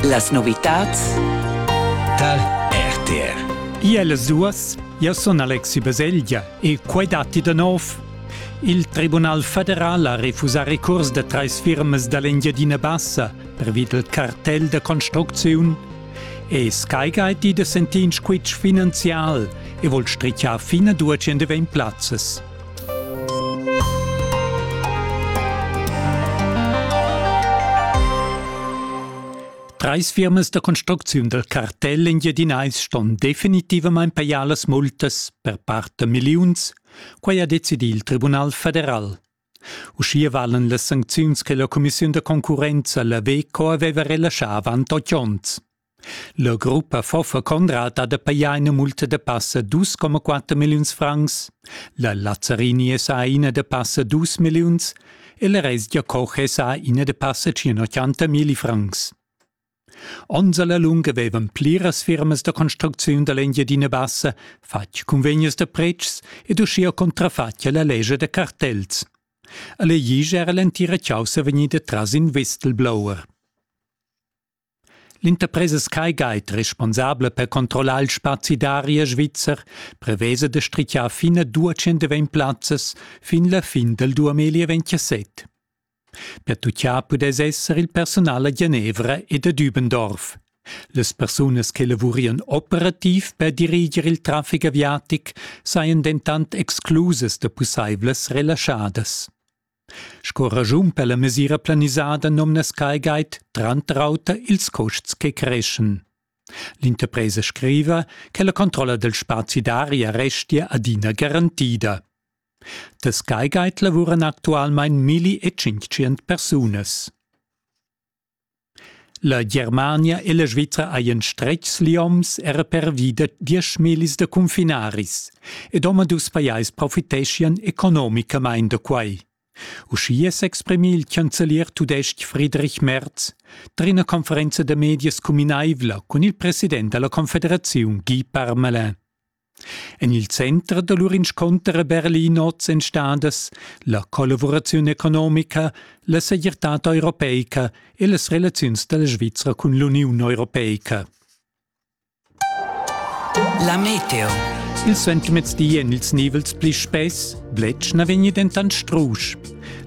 Las novitads Tal RTR Iel Suas Ja sun Alexi Baselgia e quai datti da nov. Il Tribunal federal ha refusà recurs da trais firmas da l'Engiadina Bassa pervi del cartell da construcziun e Skyguide di da sentir in squitsch finanzial e vol strichar fin a 200 plazzas. Treis firmas da construcziun del cartel in Jedinais ston definitivamain pajar las multas per part da milliuns, quai ha decidì il Tribunal federal. Uschia valen las sancziuns che la cumissiun da concurrenza, la WECO, aveva relaschà avant otg onns. La gruppa Foffa Conrad ha da pajar ina multa da passa dus coma quatter milliuns francs, la Lazzarini è sa ina da passa dus milliuns e la resgia Koch è sa ina da passa tschient milli francs. Onns alla lunga vevan pliras firmas da construcziun dall'Engiadina Bassa fatg cunvegnas da pretschs ed uschia contrafatg alla lescha da cartels. Alle Ige era l'entira chaussa vegnida tras in whistleblower. L'interpresa Sky Guide, responsabla per controllar il spazi d'aria svizzer, prevesa da strichar fin a 220 plazzas fin la fin dal 2027. Per tutgiar pudess esser il personal a Genevra ed a Dübendorf. Las persunas che lavurian operativ per diriger il traffic aviatic sajan dentant exclusas da pussaivlas relaschadas. Sco raschun per la mesira planisada nomnas quai guide tranter auter ils custs che creschan. L'interpresa scriva che la controlla del spazi d'aria restia adina garantida. Da Sky Guide lavuran actualmein milli e tschintgient persunas. La Germania e la Svizra hajan stretgs lioms era pervi da dieschmillis da cunfinaris ed omadus pajais profiteschian economicamain da quai. Uschia s'exprimi il chancelier tudestg Friedrich Merz tar ina conferenza da medias cuminaivla cun il president da la Confederaziun Guy Parmelin. En il center da lur inscunter a Berlin oz èn stadas la collavuraziun economica, la segirtad europeica e las relaziuns da la Svizra cun l'Uniun europeica. La meteo. Il suentermezdi èn ils nivels pli spess, bletsch na vegni dentant strusch.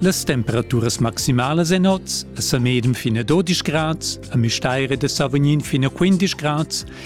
Las temperaturas maximalas en oz a Samedem fin a 12 grads, a Müstair ed a Savognin fin a 15 grads